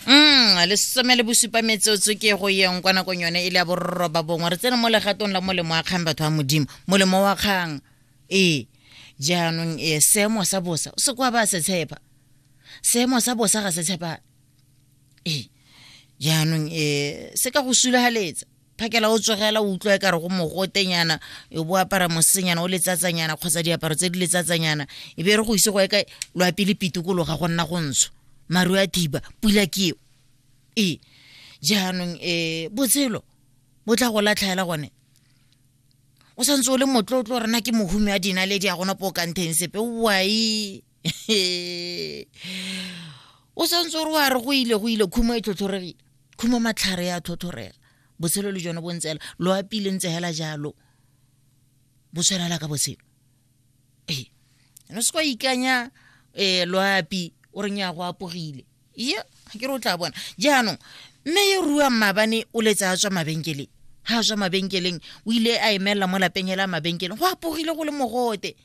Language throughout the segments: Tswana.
Mm, lesome le bosupa metsotso ke go yeng kwa nakong yone e le ya bororoba bongwe re tsena mo legatong la molemo wa kgang batho ba modimo molemo wa kgang ee jaanong ee seemo sa bosa o se kwa ba se tshepa seemo sa bosa ga se tshepa ee jaanong ee se ka go sulahaletsa phakela o tsogela o utlwa e kare go mogotenyana o bo apara mosenyana o letsatsanyana kgotsa diaparo tse di letsatsanyana e be re go ise go eka loapi le pitikologa go nna go ntsho maru a thiba pula ke eo ee jaanong um botshelo bo tla go latlhaela gone o santse o le motlotlo rena ke mohume a dinaledi a gona po o kanteng sepe wai o santse o re wa re go ile go ile khumo e tlhotlhoregile khumo matlhare ya tlhotlhorega botshelo le jone bo ntsela lo apile ntse hela jalo bo tshwanela ka botshelo ee no se kwa ikanya um loapi o reng ya go apogile ye ga ke re o tla bona jaanong mme yo ruang maabane o letse a tswa mabenkeleng ga a tswa mabenkeleng o ile a emelela mo lapeng hela mabenkeleng go apogile go le mogote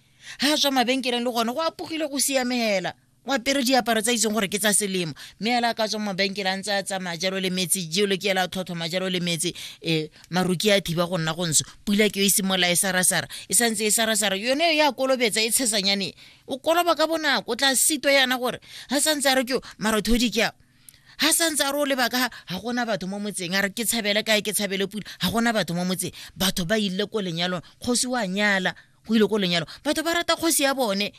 ga tswa mabenkeleng le gone go apogile go siame hela o apere diaparo tsa itseng gore ke tsa selemo mme ela ka tswa mabenkele a ntse a tsamaya jalo le metsi jelo ke ela tlhotlhoma jalo le metsi um maruki a thiba go nna go ntsho pula ke yo e simolola e sarasara e santse e sarasara yone yo ya kolobetsa e tshesanyane o koloba ka bonako o tla sitwa yana gore ga santse a re ke marothodi ke a ha santse a re o lebaka ga gona batho mo motseng a re ke tshabele kae ke tshabele pula ga gona batho mo motseng batho ba ile ko lenyalong kgosi wa nyala go ile ko lenyalo batho ba rata kgosi ya bone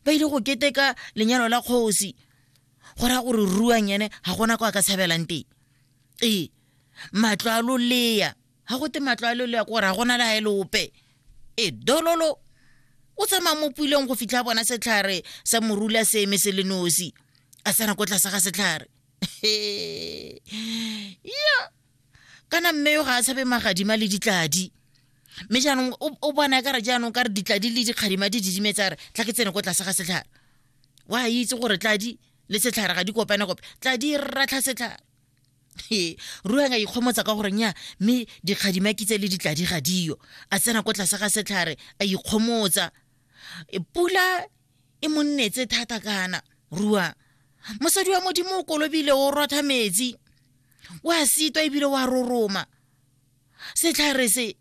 ba ile go keteka lenyalo la kgosi go raya gore ruang ene ga gona kwa ka tshabelang teng ee matlo a loleya ga gote matlo a loleya kore ga gona le ga e leope e dololo o tsamaya mo puleng go fitlha bona setlhare sa morula se eme se le nosi a tsena ko tlase ga setlhare ya kana mme yo ga a tshabe magadima le ditladi mme jaanong o bona ka re jaanong ka re ditladi le dikgadima di didimetse re tla ke tsene ko tlase ga setlhare wa a itse gore tladi le setlhare ga di kopane kope tladi ratlha setlhare e ruang a ikgomotsa ka goreng ya mme dikgadima kitse le ditladi ga diyo a tsena ko tlase ga setlhare a ikgomotsa e pula e mo nnetse thata kana rua mosadi wa modimo o kolobile o rotha metsi o a sitwa ebile o a roroma setlhare se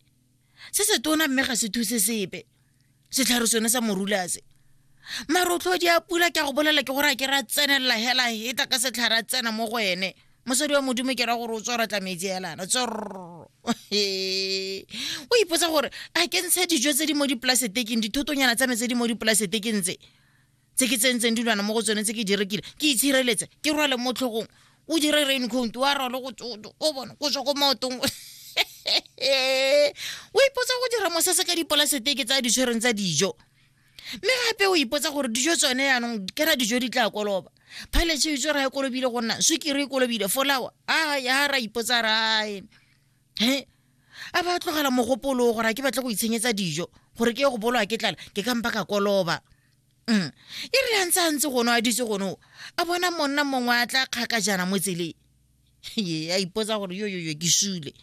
se se tona mme ga se thuse sepe setlhare sone sa morula se marotlhodi a pula ke a go bolela ke gore a ke ra tsenelela hela heta ka setlhare a tsena mo go ene mosadi wa modimo ke ra gore o tswara tlametsi elana tsorro o ipotsa gore a ke ntshe dijo tse di mo dipolaseteking dithotonyana tsa me tse di mo dipolaseteking tse tse ke tsentseng dilwana mo go tsone tse ke di rekile ke itshireletse ke rwale mo tlhogong o dire rain count wa rwale go tsoto o bone go tswa ko maotong o ipotsa go dira mosese ka dipolaseteke tsa ditshwereng tsa dijo mme gape o ipotsa gore dijo tsone yaanong kera dijo di tla koloba phaletše itse ra e kolobile go nna swikere e kolobile folawa a ya ra ipotsa rae he a ba tlogela mogopolo gore a ke batle go itshenyetsa dijo gore ke ye go bolwa ke tlala ke kampa ka koloba mm. e re yantse a ntse gono a ditse gono a bona monna mongwe a tla kgaka jana mo tseleng ye a ipotsa gore yo yo yo ke sule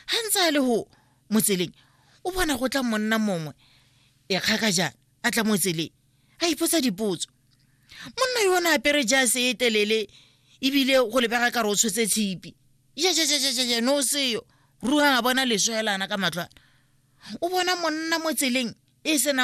ga ntse a le go mo tseleng o bona go tla monna mongwe e kgaka jaana a tla mo tseleng a ipotsa dipotso monna yo o ne apere jase e telele ebile go lebega ka re o tshotse tshipi jajajajajaja no seyo ruang a bona leswelana ka matlwana o bona monna mo tseleng e senang